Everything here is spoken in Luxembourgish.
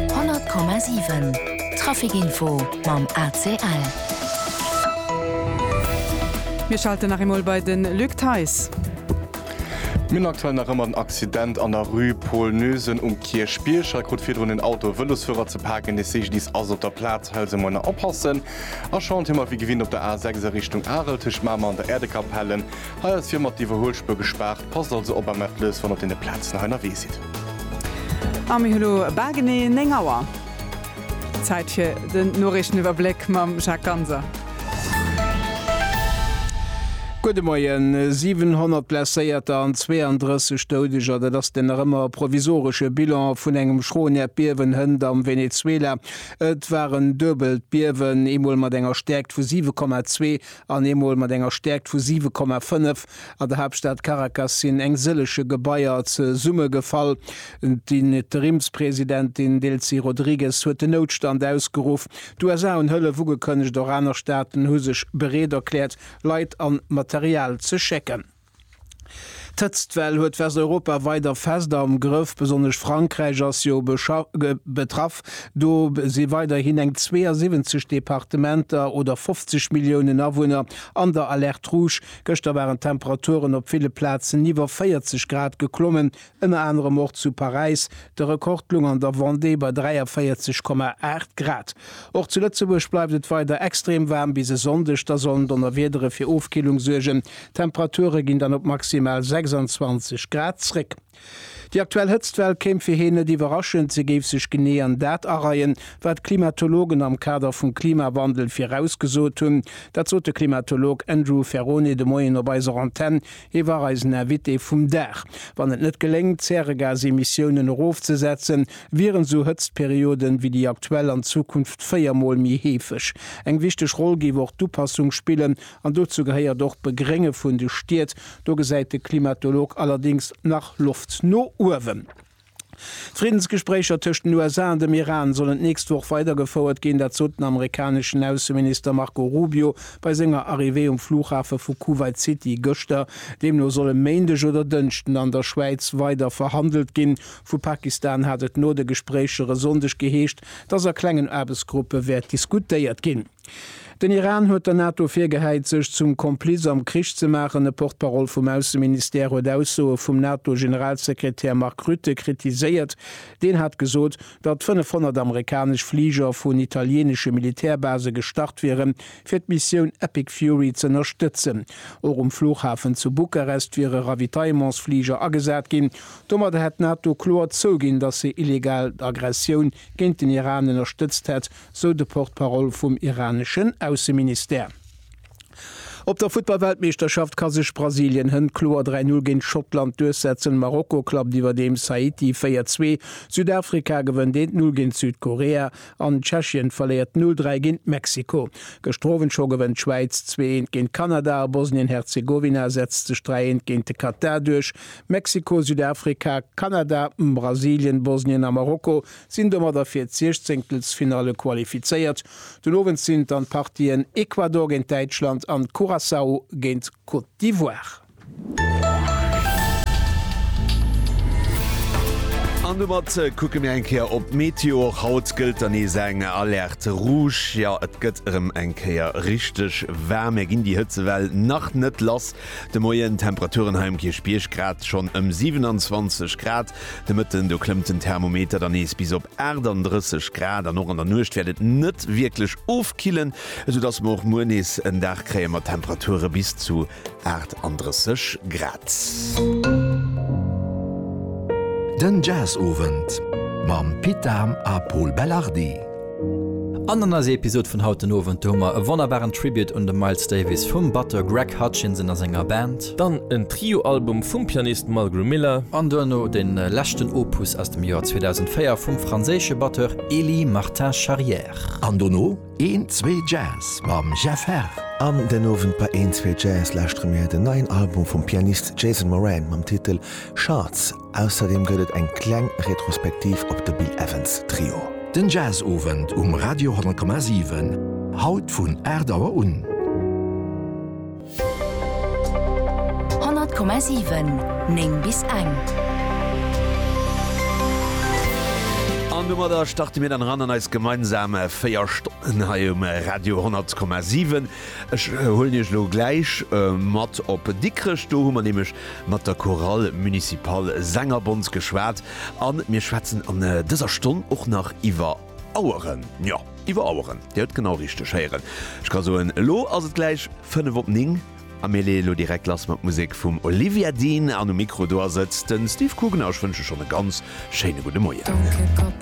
100,7 Traficinfo mam ACL. Mir schalten nach eemol bei de Luc Theis. Mir hunn aktuell nach ëmmer den Accident an der Rue Paul Noesen um Kierchbierg. Hei krut virdrun en Auto e Vëlosfuerer ze paken. De CGDIS ass op der Plaz. Hëlzemoiner oppassen a Chantier. Mat wéi gewinnt op der A6 a Richtung Arel tëscht Mamer an der Äerdekapelle. Hei ass fir mat d'Iwwerhuelspuer gespaart, passt also op am Atlas wann op den Plazen hei nerwee sidd. A mir hu lo bal genee 9 Auer. Zäit fir den Noriichteniwwerbléck mam Jacques Ganser. Gudde Moien. 700 Blesséierter an 32 Doudeger, dat ass den nach ëmmer e provisoresche Bilan vun engem schroen Äerdbiewen hënt am Venezuela. Et war en duebelt Biewen, eemol mat enger Stäerkt vu 7,2 An eemol mat enger Stäerkt vu 7 Komma 5 an der Haaptstad Caracas sinn eng sëllege Gebaier zesumme gefall. D'Interimspresidentin Delcy Rodrigues huet den Noutstand ausgeruff. D'USA hunn Hëllef ugekënnegt, och aner Staaten hu sech bereet erkläert, Leit an Material ze schécken. D'Hëtztwell huet Westeuropa weider fest am Grëff, besonnesch Frankräich ass jo betraff. Do si weiderhin eng 72 Departementer oder 50 Milliounen Awunner an der Alerte rouge. Gëschter waren d'Temperaturen op ville Plazen iwwer 40 Grad geklommen, Ënner anerem och zu Paräis de Rekord gelung an der Vendée bei 43,8 Grad. Och zu Lëtzebuerg bleift et weider extrem waarm. Bis e Sonndeg da sollen Donnerwiedere fir Ofkillung suergen. D'Temperature ginn dann op maximal 26 Grad zréck. Déi aktuell Hëtztwell kéim fir heen net iwwerraschend. Se géif sech genee an dat areien, wat d'Klimatologen am Kader vum Klimawandel virausgesot hunn. Dat sot de Klimatolog Andrew Ferrone de Moien op eiser Antenn. Hie war eisen Invité vum Dag. Wann et net geléngt, d'Zäregasemissiounen erofzesetzen, wieren esou Hëtztperioden wéi déi aktuell an Zukunft véier Mol méi heefeg. Eng wichteg Roll géif och d'Upassung spillen, an dozou gehéiert och d'Begrénge vun de Stied. Do gesäit de Klimatolog allerdéngs nach Loft no uewen. D'Friddensgespréicher tëscht den USA an dem Iran sollen d'nächst Woch weidergefouert ginn. Dat sot den amerikaneschen Ausseminister Marco Rubio bei senger Arrivée um Flughafe vu Kuwait City gëschter. Deemno soll e Méindeg oder Dënschden an der Schwäiz weider verhandelt ginn. Vu Pakistan hat et no de Gespréicher e Sonndeg geheescht, dass a klengen Aarbechtsgruppe wäert diskutéiert ginn. Den Iran huet der NATO virgehäit, sech zum Kompliz am Krich ze maachen. E Porte-parole vum Ausseministère huet Aussoe vum NATO-Generalsekretär Mark Rutte kritiséiert. Deen hat gesot, datt 500 amerikanesch Fliger vun italieenesche Militärbase gestart wiere fir d'Missioun Epic Fury z'ënnerstëtzen. Och um Fluchhafen zu Bukarest wiere Ravitaillementsfliger agesat ginn. Domadder hätt d'NATO kloer zouginn, datt se illegal d'Aggressioun géint den Iran ënnerstëtzt hätt, sou de Porte-parole vum iraneschen Ausseministère. Op der Futtballweltmeeschterschaft ka sech Brasilien hënt kloer 3 Null géint Schottland duerchsetzen. Marokko klappt iwwerdeems Haiti 4 Zwee. Südafrika gewënnt 1 Null géint Südkorea an Tschechien verléiert 0 Dräi géint Mexiko. Gëschter Owend scho gewënnt d'Schwäiz zwee Eent géint Kanada a Bosnien-Herzegowina setzt sech 3 Eent géint de Katar duerch. Mexiko, Südafrika, Kanada, Brasilien, Bosnien a Marokko sinn domadder fir d'Siechzehnktelsfinalle qualifizéiert. Den Owend sinn dann d'Partien Ecuador géint Däitschland an Curaçao géint Côte d'Ivoire. An domat kucke mir eng Kéier op d'Meteo. Och haut gëllt dann nees eng Alerte rouge. Jo, et gëtt erëm eng Kéier richteg waarm. Mir ginn déi Hëtzewell nach net lass de Moien. D'Temperaturen hei um Kierchbierg grad schonn ëm 27 Grad. De Mëtten, do klëmmt den Thermometer dann nees bis op 38 Grad an och an der Nuecht wäert et net wierklech ofkillen, esou dass mer och muer nees en Dag kréie mat Temperature bis zu 38 Grad. Den Jazzowend mam Pit Dahm a Pol Belardi. An an eiser Episod vun haut den Owend, do hu mer e wonnerbaren Tribute un de Miles Davis vum Batteur Greg Hutchinson a senger Band. Dann en Trio-Album vum Pianist Mulgrew Miller. An duerno den leschten Opus aus dem Joer 2004 vum franséische Batteur Elie Martin Charrière. An dono een zwee Jazz mam Jeff Herr. An den Owend bei een zwee Jazz lauschtere mir den neien Album vum Pianist Jason Moran mam Titel Shards. Ausserdeem gëtt et eng kleng Retrospektiv op de Bill Evans Trio. Den Jazz-Owend um Radio 100,7, haut vun 8 Auer un. 100,7 9 bis eng. An domadder starte mir dann eran an eis gemeinsam 4 Stonnen hei um Radio 10,7. Ech huelen Iech elo gläich mat op Dikrech. Do hu mer nämlech mat der Chorale Municipale Sängerbond geschwat. A mir schwätzen an dëser Stonn och nach iwwer. Aueren, jo, iwwer Aueren. Dir huet genau richteg héieren. Ech ka soen, elo ass et gläich fënnef op ning a mir leeë lo direkt lass mat Musek vum Olivia Dean an um Mikro do ass et de Steve Coogan a ech wënsche schonn e ganz schéine gudde Moien.